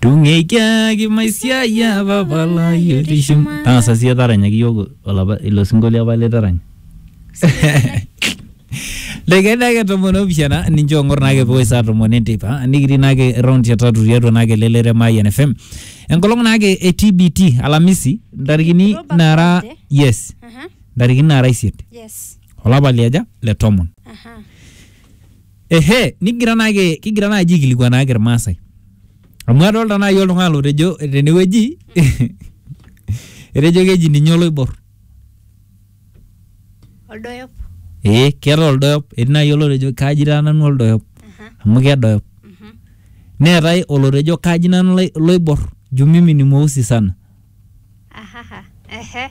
tung'eikiaki maisiai apa palai otii shumata tang'asa siye taranyaki iyiok olapa ilo sinkolio apa litaranya Lekeni ake tomon opishana ninche ong'or naake pewoi saa tomon enteipa nikitii naake round ya tatu tiatua naake lelere Mayian FM enkolong naake e TBT Alamisi ntarikini October nara Friday. yes Aha, ntarikini nara isiet yes. olapa liaja le tomon Aha. Ehe, nikigira naake kigira naaji aikilikuanaaki Irmaasai. Amu adolta naaji oltung'ani lotejo tenewueji etejo keji ninye oloibor. Oldoyop. Ee keeta oldoyop, etii naaji olotejo kaji taa nanu oldoyop Aha. amu kedoyop. Mhm. Neetae olotejo kaji nanu lai- loibor juu mimi ni mweusi sana. Ahaha. Ehe.